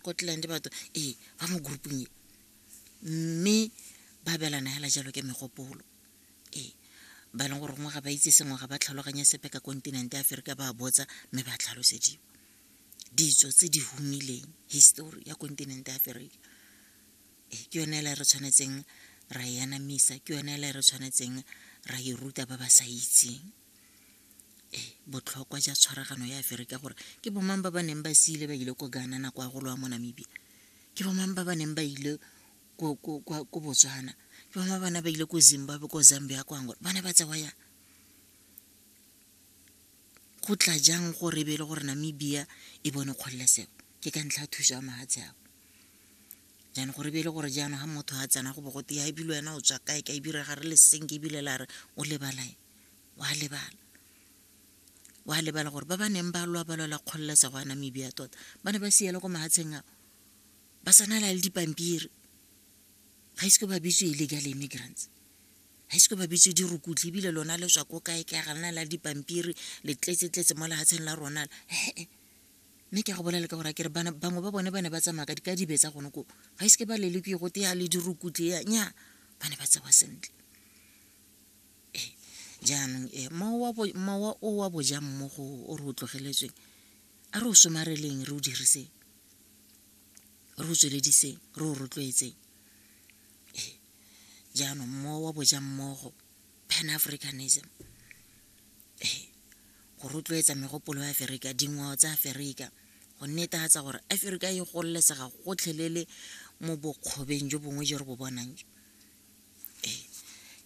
go tlang le batho ee ba mo groupong e mme ba belana hela jalo ke megopolo ee ba e leng gore gongwe ga ba itse sengwe ga ba tlhaloganya sepe ka kontinente ya aferika ba botsa mme ba tlhalosediwa ditso tse di humileng histori ya kontinente ya aferika ee ke yone ele re tshwanetseng ra e anamisa ke yone ele re tshwanetseng ra e ruta ba ba sa itseng ee botlhokwa ja tshwaragano ya aferika gore ke bomang ba ba neng ba siile ba ile ko gana nako ya golo wa mo namibia ke bomang ba ba neng ba ile ko botswana ke bama bana ba ile ko zimbabwe ko zambia ko angola bana ba tsewa yang go tla jang gore be e le gore namibia e bone kgololesego ke ka ntlha ya thuso ya mahatshe ao jaanong gore be e le gore jaanong ga motho a tsena go bogote ya ebile wena o tswa kae ka ebile ga re le seng ke ebile la re o lebalae wa lebala wa lebala gore ba ba neng ba lwa ba lwela kgololesego ya namibia tota ba ne ba siela ko mahatsheng ao ba tsanela le dipampiri ga ise ko ba bitse illegal immigrants ga ise ko ba bitse dirukutlhi ebile lona le swa ko kae ka ga lena la dipampiri le tletsetletse mo lehatsheng la rona ee mme ke go bolela ka gore kere bangwe ba bone ba ne ba tsamaya ka dibe tsa gone ko ga ise ke ba lele ke go teya le dirukutlhi ya nya ba ne ba tsewa sentle ee jaanong ee mowa o wa bojang mo go o re o tlogeletsweng a re o somareleng re o diriseng re o tswelediseng re o rotloetseng ee jaanong mowa wa bojang mmogo pan africanism ee go rotloetsa megopolo ya aferika dingwao tsa aferika go netefatsa gore aferika e gololesega gotlhelele mo bokgobeng jo bongwe jo re bo bonang jo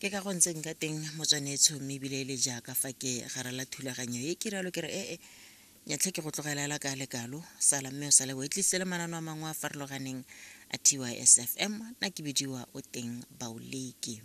ke ka go ntseng ka teng motswane etsho mme ebile e le jaaka fa ke garela thulaganyo e ke rialo ke re ee nyatlhe ke go tlogelela ka lekalo sala mme o sale o e tlisitse le manano a mangwe a farologaneng a tysfm na ke bidiwa o teng baoleki